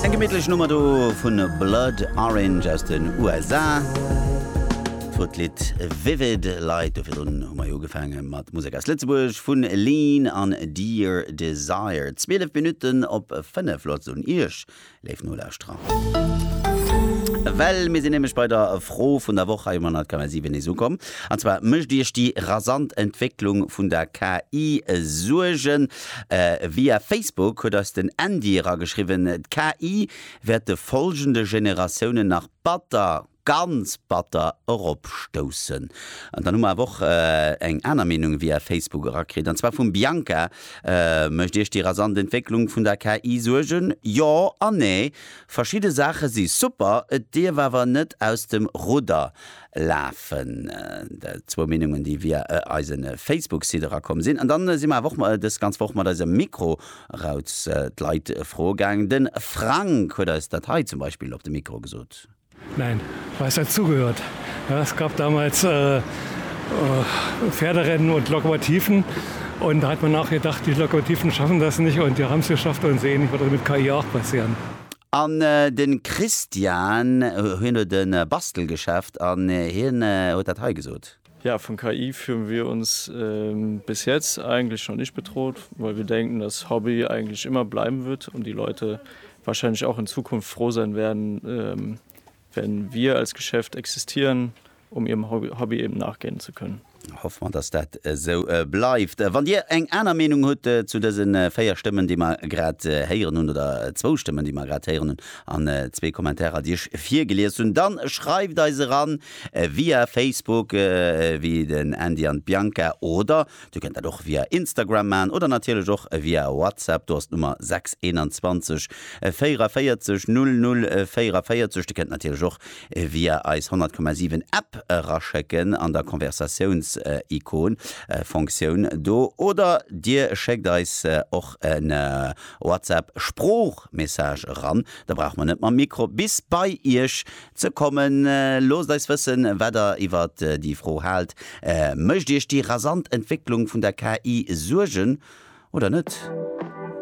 Eng gemittlech Nummer do vu Blood Orange aus den USA. Wou d'Lidd Vivid leit. Doverdrun hu mer jo ugefaange mat Musek aus Lëtzebuerg vun Lean an Dear Desire. 12 Minutten op 5. Lotz un Iech, léif Nolauschterer, well mir sinn nämlech bei der Fro vun der Woch hei um 100 KM 7 nees ukomm. An zwar, Mécht Iech déi rasant Entwécklung vun der KI Suergen? Via Facebook huet eis den Andy erageschriwwen, D'KI wäert de folgende Generatiounen nach batter, ganz batter eropstoussen. An dann hu mer awer och eng aner Meenung via Facebook erakritt, an zwar vum Bianca, Mécht Iech déi rasant Entwécklung vun der KI Suergen? Jo an Nee. Verschidde Saache si super, et dierf awer net aus dem Rudder lafen zwou Meenungen, déi via eise Facebook-Site erakomm sinn. An dann si mer awer och dës ganz Woch mat eiser Mikro-Rautz d'Leit froe gaangen. De Frank huet eis dat hei zum Beispill op de Mikro gesot. Nein, weiß hat zugehört. Es gab damals Pferderennen und Lokomotiven und da hat man auch gedacht, die Lokomotiven schaffen das nicht und die haben es geschafft und sehen, ich würde mit KI auch passieren. An den Christian, hien huet en Bastelgeschäft an hien huet dat hei gesot. Ja, von KI fühlen wir uns bis jetzt eigentlich noch nicht bedroht, weil wir denken, dass Hobby eigentlich immer bleiben wird und die Leute wahrscheinlich auch in Zukunft froh sein werden, Wenn wir als Geschäft existieren, um ihrem Hobby eben nachgehen zu können. Hoffe mer, dass dat esou bleift. Wann Dir eng aner Meenung hutt zu dëse véier Stëmmen, déi mer grad héieren hunn, oder zwou Stëmmen, déi mer grad héieren hunn, an zwee Kommentarer, déi ech virgelies hunn, dann schreift eis eran via Facebook, wéi den Andy an d'Bianca, oder Dir kënnt dat och via Instagram maachen oder natierlech och via WhatsApp. Do ass d'Nummer 621 44 00 44. Dir kënnt natierlech och via eis 100,7 App eraschécken an der Konversatiouns-Ikon, Fonktioun, do oder Dir schéckt eis och e WhatsApp-Sproochmessage eran. Da brauche mer net mam Mikro bis bei Iech Ze kommen. Loosst eis wëssen, wat der iwwert déi Fro haalt. Mécht iech déi rasant Entwécklung vun der KI Suergen oder net?